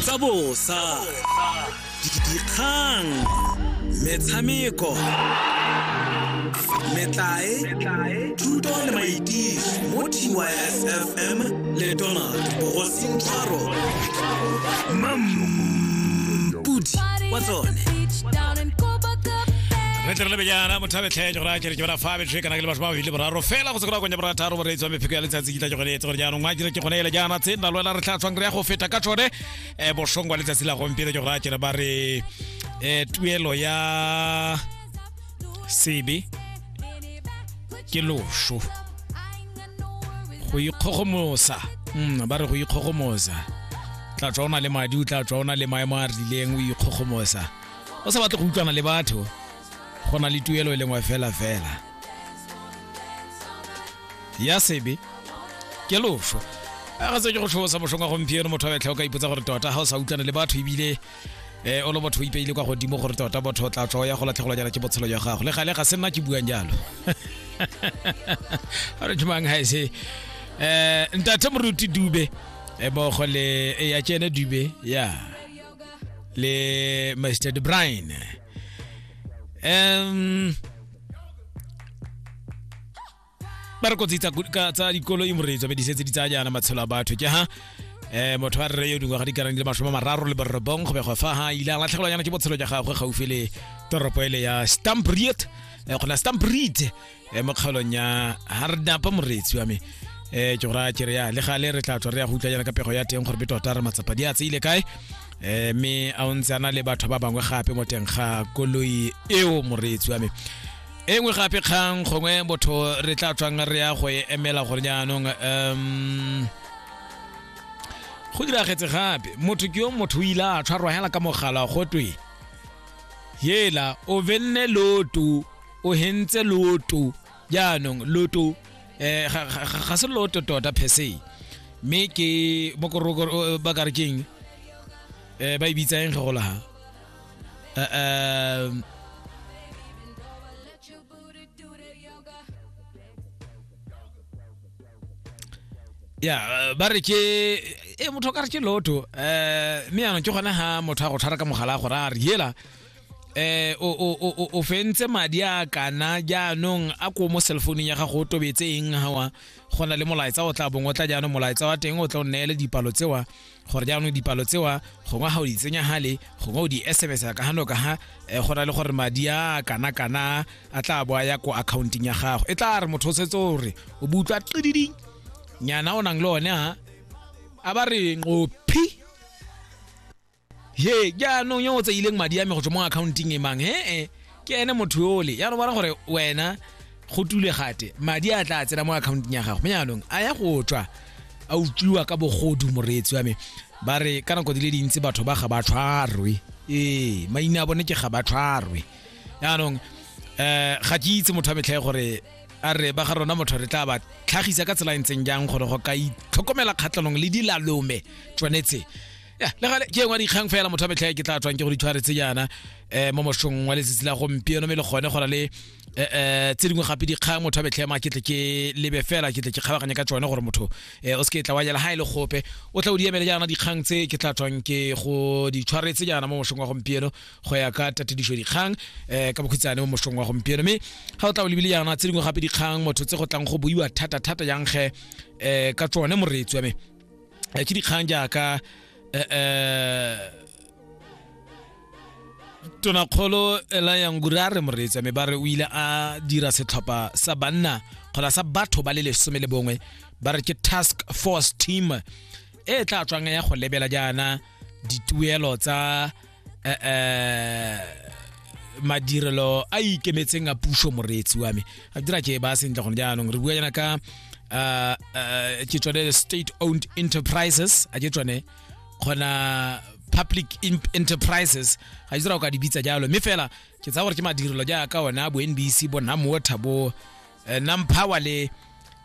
tsa bosa dikgang metshameko metlae thuto le maitiso mo tysfm le donald bogosintshwaro mampudi wa tsone re tle re lebe jaana mothabetlhe jora kere ke bara fa betlhe kana ke le batho ba babedi le boraro fela go se kora konya borataro boreetsi wa mepheko ya letsatsi dila ke gone etse gore jaanong wa kere ke gone ele jaana tse nna lwela re tlhatswang re ya go feta ka tsone um bosong wa letsatsi la gompieno ke gore a kere ba re um tuelo ya sebe ke loso go ikgogomosa mm, ba re go ikgogomosa tla tswa o na le madi o tla tswa o na le maemo a rileng o ikgogomosa o sa batle go utlwana le batho go na le tuelo e lengwe fela fela ya sebe ke loso a ga se ke go tlhosa mošong wa gompieno motho wa betlha o ka ipotsa gore tota ga o sa utlwane le batho ebile um o le motho o ipeile kwa godimo gore tota motho o tla tlo ya go latlhegelwa jana ke botshelo jwa gago le gale ga se nna ke buang jalo a re thomang ga ese um ntate moruti dube eh, mmogo le eh, ya tsene dube ya le mr de brine um ba re kotsi tsa ku- ka- tsa dikoloi moreetso be di setse di tsaya jaana matshelo a batho ke ha eh motho wa rre yo dingwaga di karang di le masome a mararo le borobong go begwa fa ha ile a latlhegelwa yana ke botshelo jwa gagwe gaufi le toropo ele ya stampriet eh, gona stampriet eh, mo kgaolong ya hardapa moreetsi wa me eh ke go raya kere ya le gale re tla tswa re ya go utlwa yana ka pego ya teng gore be tota re matsapa di a tseile kae eh me a o ntse ana le batho ba bangwe gape mo teng ga koloi eo moreetsi wa me e nngwe gape kgang gongwe botho re tla tswang re ya go e emela gore jaanong um go diragetse gape motho ke yo motho o ile a tshwarwa hela ka mogala go twe yela o benne loto o hentse loto jaanong loto eh ga- ga ga- ga se loto tota per se mme ke bokorokoro ba ka re keng eh ba e bitsang ge go laga Eh, eh, ya eh, ba re ke e motho o ka re ke loto um mme yanong ke gone ga motho a go tshwara ka mogala a gore a re yela eh o o o o fentse madi a kana jaanong a ko mo cellphone ya gago o tobetse eng hawa go na le molaetsa o tla bong o tla jaanong molaetsa wa teng o tla o neele dipalo tsewa gore jaanong dipalo tsewa gongwe ga o di tsenya hale gongwe o di sms ka gano ka ha eh, go na le gore madi a kana kana a tla bo a ya ko accounting ya gago e tla re motho o setse o re o butlwa qididi nyana o nang le one ha a ba re nqophi he jaanong yo o tseileng madi a me go tswa mo akhaonteng e mang he-e ke ene motho yole ya no bona gore wena go tule gate madi a tla tsena mo akhaonteng ya gago jaanong a ya go tswa a utlwiwa ka bogodu moreetsi wa me ba re ka nako di le dintsi batho ba ga ba tshwarwe ee maina a bone ke ga ba tshwarwe jaanong um ga ke itse motho wa metlhae gore a re ba ga rona motho re tla ba tlhagisa ka tsela e ntseng jang gore go ka itlhokomela kgatlhanong le dilalome tsone tse ya le gale ke engwa dikgang fela motho a metlhae ke tla tswang ke go ditshware tse jaana um mo moshong wa letsatsi la gompieno me le gone go na le um tse dingwe gape dikgang motho a metlhae ma ke tle ke lebe fela ke tle ke kgabaganye ka tsone gore motho um o se ke tla wa jela ga e le gope o tla o di emele jaana dikgang tse ke tla tswang ke go ditshware tse jaana mo moshong wa gompieno go ya ka tatedišo dikgang um ka bokhutsane mo moshong wa gompieno me ga o tla o lebile jaana tse dingwe gape dikgang motho tse go tlang go buiwa thata-thata jang ge um ka tsone moreetsi wa me eh, ke dikgang jaaka eh, eh, tonakgolo elayangura re moreetsa me ba re o ile a dira setlhopha sa banna kgona sa batho ba le lesome le bongwe ba re ke task force team e tla tswang ya go lebela jaana dituelo tsa eh, eh madirelo a ikemetseng a puso moreetsi wa me a dira ke ba sentle gone jaanong re bua yana ka eh, eh, ke tsone state owned enterprises a ke tsone kgona public enterprises ga dira o ka di bitsa jalo mme fela ke tsaya gore ke madirelo jaaka ona bo nbc bo namowater bo eh, namphawa le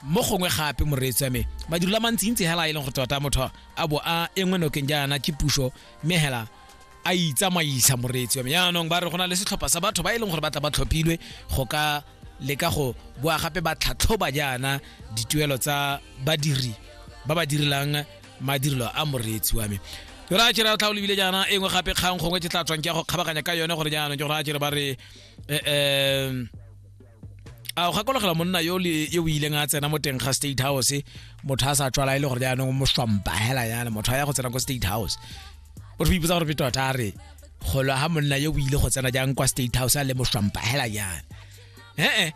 mo gongwe gape moreetsi wa me madiro la mantsintsi hela e leng go tota motho a bo a engwe nokeng jaana ke puso mme hela a itsamaisa moreetsi wa me yaanong ba re go na le setlhopha sa batho ba e leng gore ba tla ba tlhophilwe go ka leka go boa gape ba tlhatlhoba jaana dituelo tsa badiri ba ba direlang madirelo a moreetsi wa me ra tšhira tlha o lebile jaana e nngwe gape kgang gongwe ke tla tswang ke ya go kgabaganya ka yone gore jaanong ke gore a tšhire ba re um a o gakologela monna yo yo o ileng a tsena mo teng ga state house motho a sa tswala e le gore jaanong moswampa hela yana motho a ya go tsena ko state house o re ipotsa gore peto tota a re golo ha monna yo o ile go tsena jang kwa state house a le moswampa hela yana ee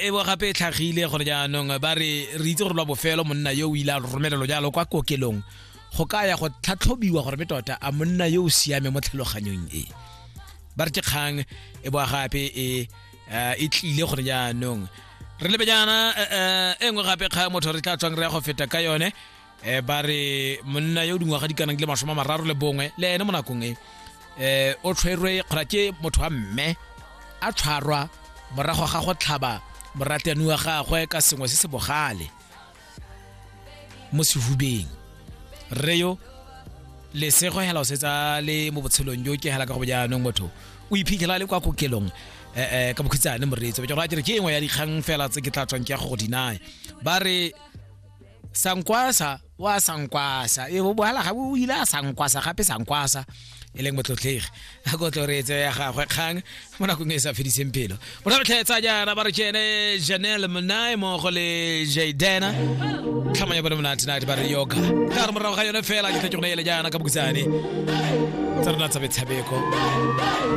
e bo gape e tlhagile gore jaanong ba re re itse gore lwa bofelo monna yo o ile a romelelo jalo kwa kokelong go ka ya go tlhatlhobiwa gore be tota a monna yo o siame mo tlhaloganyong e ba re ke kgang e boa gape e eh, e tlile gore jaanong re lebe jaana eh, eh, e nngwe gape kgang motho re tla tswang re ya go feta ka yone um ba re monna yo o dingwaga di kanang le masome a mararo le bongwe le ene mo nakong e um o tshwerwe kgora ke motho wa mme a tshwarwa morago ga go tlhaba morateani wa gagwe ka sengwe se se bogale mo sehubeng rre yo lesego hela o setsa le mo botshelong jo ke hela ka go jaanong motho o iphitlhela le kwa kokelong eh, eh, ka bokhitsane moreetsi ba ke gore ke engwe ya dikgang fela tse ke tla tswang ke ya go go dinae ba re sankwasa wa sankwasa e bo bohala ga o ile a sankwasa gape sankwasa e leng motlotlegi a ko tlo reetse ya gagwe kgang mo nakong e sa fediseng pelo mo re tlhetsa jana ba re kene janel monae mogo le jadena tlhamo ya bone monate nate ba re yoga ga re morago ga yone fela ke tlhetsego ele jana ka bokusane tsa rona tsa metshameko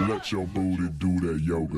Let your booty do that yoga.